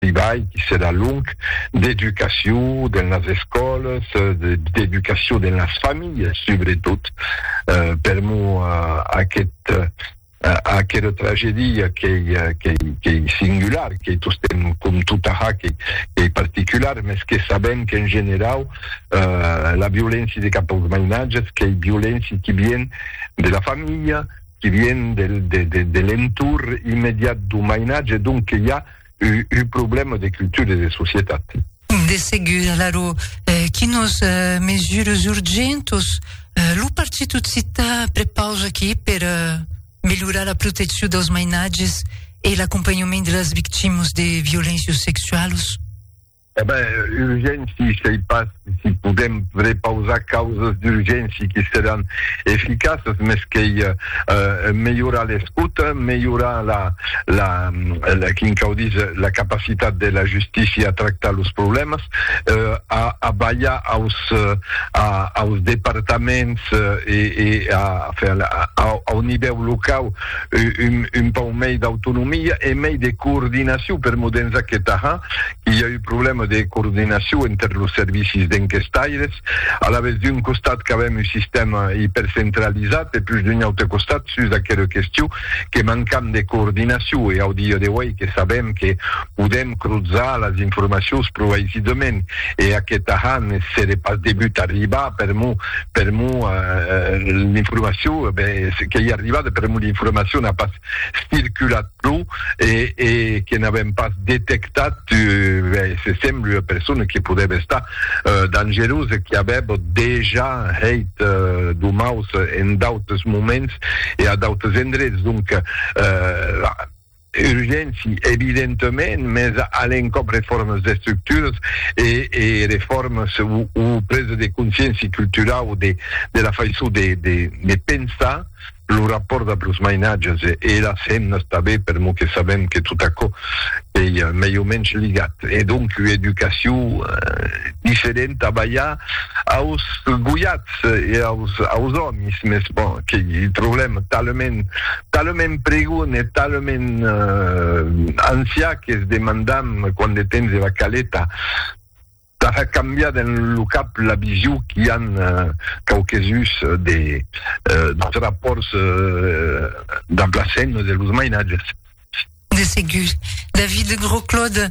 debai díser a lung, d'educacion dens las escòlas, d'educacion dens las familhas subretot. Per mo aquest aquera tragedia qu'ei qu'ei singular, qu'ei tostemp com tota ja qu'ei particular, mès que sabem qu'en generau la violéncia de cap aus mainatges qu'ei violéncia qui vien de la familha, qui vien de l'entorn immediat d'un mainatge, donc que i a un problèma de cultura e de societat. De segur, alara, quinos mesures urgentos lo Partit Occità prepausa aquí per melhorar la proteccion dels mainatges e l'acompanhament de las victimas de violéncias sexualas? E ben, urgénci, sei pas si podem prepausar causas d'urgénci que seràn eficaças, mès qu'ei melhorar l'escota, melhorar la, la, la, quin cau díser, la capacitat de la justícia a tractar los problèmas, a, a balhar aus, a, aus departaments e, e a, enfin, a, au nivèu locau, un pauc mei d'autonomia e mei de coordinacion per Modenza que Tahà, qu'i a un problèma de coordinacion enter los servicis d'enquestaires, alavetz d'un costat qu'avèm un sistèma ipercentralizat e pus d'un aute costat sus aquela question que mancam de coordinacion e au dia d'auei que sabèm que Podèm cruzar las informacions pro aisidament e aqueth ahà ne sere pas debut arribar per mo, per mo l'informacion qu'ei arribada per mo l'informacion n'a pas circulat pro e e que n'avèm pas detectat se sembla ua persona que podèva estar dangerosa que avèb dejà hèit domaus en d'autes moments e a d'autes endrets donc Urgéncia, evidentament, mès a l'encòp refòrmas d'estructuras e refòrmas o presa de consciéncia culturau de la faiçon de pensar lo rapòrt dab los mainatges e las femnas tanben, per mot que sabèm que tot aquò ei mai o mensh ligat. E donc ua educacion diferenta balhar aus goiats e aus òmis, mès bon, qu'ei un problèma talament. talament pregon e talament ancià que's demandam quant de temps eva caleta tà hèr cambiar dens lo cap la vision qu'i an quauquesuns deus rapòrts damb las hemnas e los mainatges. De segur. David Grosclaude,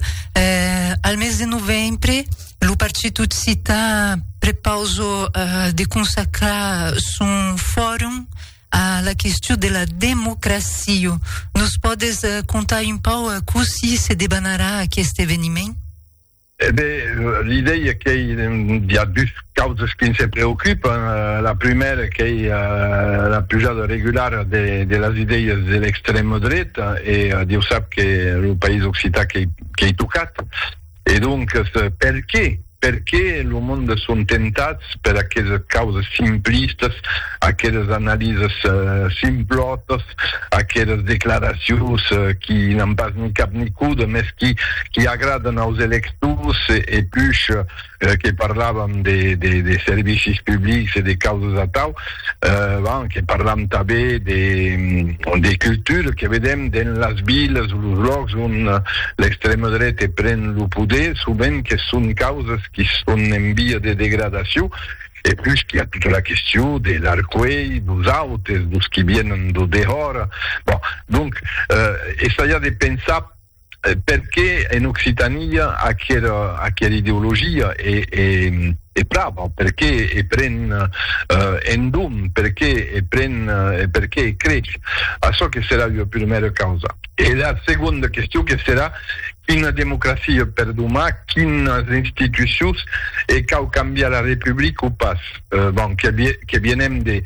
Al mes de novembre, lo Partit Occità prepausa de consacrar son forum a la question de la democracia. Nos pòdes contar un pauc cossí se debanarà aqueste eveniment? E ben, l'idèia qu'ei, i a dus causas que nse preocupan. La prumèra qu'ei la pujada regulara de las idèias de l'extrèma dreta e Dieu sap que lo país occitan qu'ei tocat. E doncas, perqué? Perqué lo monde son tentats per aquesas causas simplistas, aquesas analisas simplòtas, aqueras declaracions qui n'an pas ni cap ni còde, mès qui agradan aus electors e push que parlavan de servicis publics e de causas atau? Avant que parlam tanben de cultura, que vedèm dens las vilas o los lòcs ont l'extrèma dreta pren lo poder, sovent que son causas qui son en via de degradacion, e pus qu'i a tota la question de l'arcuelh dos autes, dos qui vienen d'o dehòra. Bon, donc, essaiar de pensar, Perqué en Occitania aquera ideologia e prava? Perqué e pren en dom? Perqué e pren e perqué e creix? Açò que serà ua prumèra causa. Era segonda question que serà, quina democracia per domà? Quinas institucions? E cau cambiar la Republica o pas? Bon, que vienem de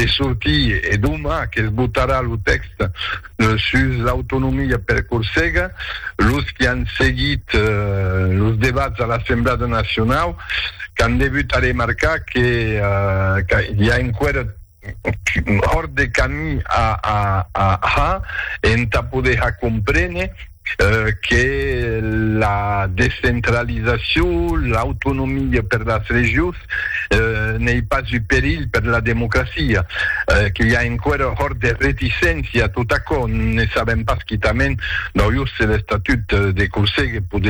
sortir e domà que's botarà lo tèxte. Sus l'autonomia per Corsega, los qui an seguit los debats a l'Assemblada Nacionau qu'an devut aremarcar que qu'i a enqüèra hòrt de camí a ha entà poder ha compréner que la descentralizacion, l'autonomia per las regions n'ei pas un perilh per la democracia, que i a enqüèra hòrt de reticéncia a tot aquò, ne sabèm pas quitament, d'aujós se l'estatut de Corsega